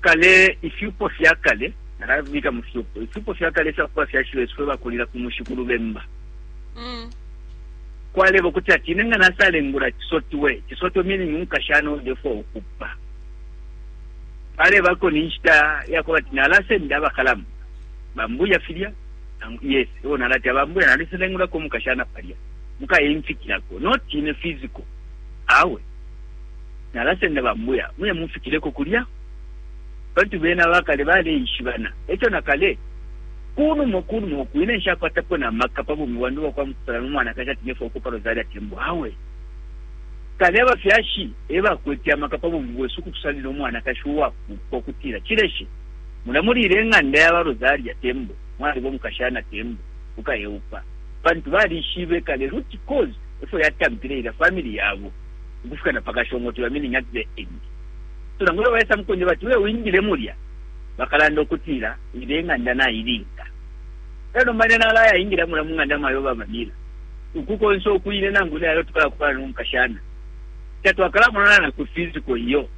kale, ifyupo fya kale, nalabika mu fyupo, ifyupo fya kale ifya kuba fyashi besu fwe bakulila ku mushi ku Lubemba. Mm. Kwalebo kuti ati ine nga nasalengula kisotwe, kisotwe meaning umukashana odefo ukupa. Pale bako ni nshita ya kuba ati nalasenda abakalamu. Bambuya filya, yes, o nalati abambuya naliselengula ko mukashana palya. Muka yimfikira ko, not in a physical. Awe. Nalasenda ba Mbuya muye mumfikileko kulya, pantu bena abakale baleishibana. Eco na kale, kunuma, kunuma uku, ine nshakwatapo na maka pa bumi bwandi ubwa kwa mukupalana no mwanakashi ati ne fwauko pa Rosario ati embu. Awe. Kale abafyashi ebakwete amaka pa bumi bwesu ukutusalila umwanakashi uwakuuka ukutila, Chileshe, mula muliila ing'anda ya ba Rosario ati embu, mwaliba umukashana ati embu, ukayeupa. Pantu balishibe kale root cause efyo yatampile ilya family yabo. ukufika na pakashongotula, meaning at the end. So nangu ilyo baisa mukunje bati uye wingile mulya, bakalanda ukutila ilya ing'anda nailinga. Elyo nomba ine nalaya ingila mulya mu ng'anda mayo ba Vanilla. Uku konse uku ine nangu ine lelo tukalakupana no mukashana. Tatwakalamonana na ku physical iyo.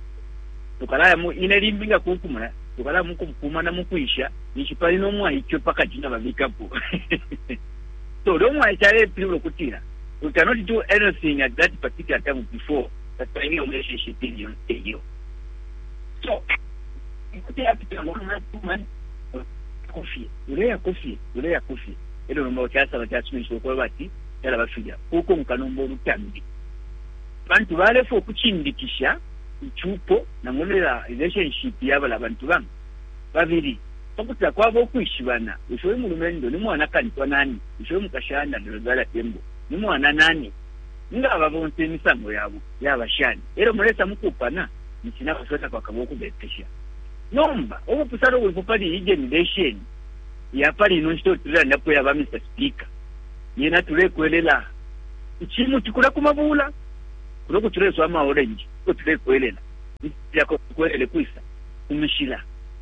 Tukalaya mu ine limbi nga kunkumula, tukalaya mukumkumana mukwisha, ninshi pali no mwaice pakati nga babikapo. So ulo umwaice alepilibula ukutila we cannot do anything at that particular time before that time iyo relationship ili yonse iyo. So kuti yapitila mu mwana kumani kofie uleya kofie uleya kofie elo nomba kyasaba kyasumisha okuba bati yala bafilya kuko nkanomba olutambi bantu balefa okuchindikisha ichupo nangonela relationship yabala bantu bambi babili pa kuti takwaba ukwishibana. Bushe uyu mulumendo ni mwana kantwa nani? Bushe uyu mukashana ni Rosarya Tembo ni mwana nani? Nga aba bonse imisango yabo yaba shani e lyo mulesa mu kuupana? Ninshi na bashibo takwakabe ukubepesha. Nomba ubupusano bulipo pali iyi genilesheni ya pali ino nshita iyo tulelandapo iya ba Mr. Speaker, yena tulekwelela icimuti kulya ku mabuula kulya uko tuleswa amaorenji, e ko tulekwelela. Ifya kukwelele kwisa? Ku mishila.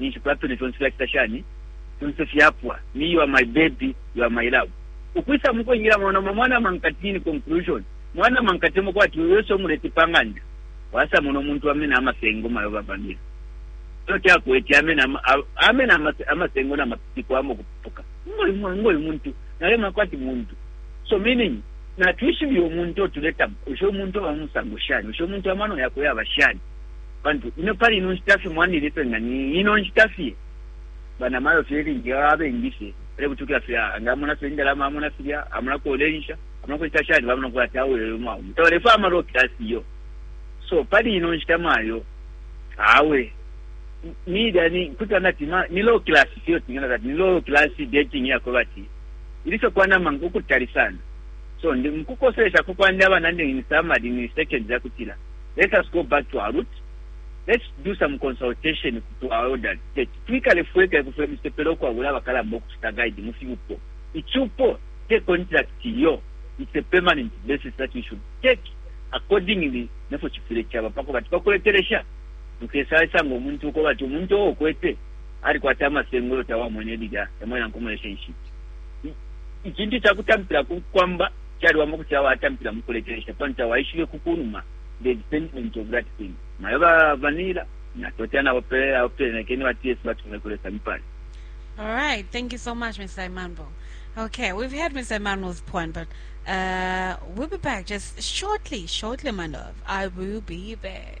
ninshi Plato ne fyonse fyacita shani? fyonse fyapwa. Me, you are my baby, you are my love. Ukwisa mukwingila mwa nomba mwana mankati in conclusion, mwana mankati emo kwati uyo ese umulete pa ng'anda, wasa mona umuntu amena amasengo mayo babamina. Elo kyakwete amena amena amasengo na mapiko amo kupuka. Ngoyu mwana ngoyu muntu, nale makwati muntu. So meaning na twishibi umuntu otuleta usho umuntu wa musango shani, usho umuntu amano yakwe yaba shani. Pantu ino pali ino nshita fye mwandini fye nga ni ino nshita fye, banamayo fye ilingi abengi fye balebutukila fye, ah, nga amona fye indalama, amona filya, amona ko ulensha, amona ko cita shani, bamona ukuti ati awe uyu mwaume tabalefwaya ama low class iyo. So pali ino nshita mayo, awe nilya ni kutila nati ma- ni low class fye tingana kati ni low class dating yako bati ili fye kwanama ukutali sana so ndi mkukoselesha kukwandi abana ndi ni samadi ni second zakutila let us go back to our root let's do some consultation to our elders teti twikale fweka ifwe fwe misepela ukwabula abakalamba ukucita guide mu fyupo icupo te contract iyo it's a permanent basis that we should take accordingly nefo cifwile caba pako bati bakuletelesha nkesaisanga omuntu uko bati omuntu owo okwete alikwata amasengolo tawamwene lilya emwena nkomulesha inshiti icintu cakutampila kwamba Caliwama ukuti awe atampila mu kulekelesha, pantu tawaishibe ku kunuma the extendment of that thing. Mayo ba Vanilla, natotela nabo pele awo pele nakeni bati Yesu batume kulesa mipale. All right, thank you so much, Mr. Imanbo. Okay, we've heard Mr. Imanbo's point, but uh, we'll be back just shortly, shortly, my love. I will be back.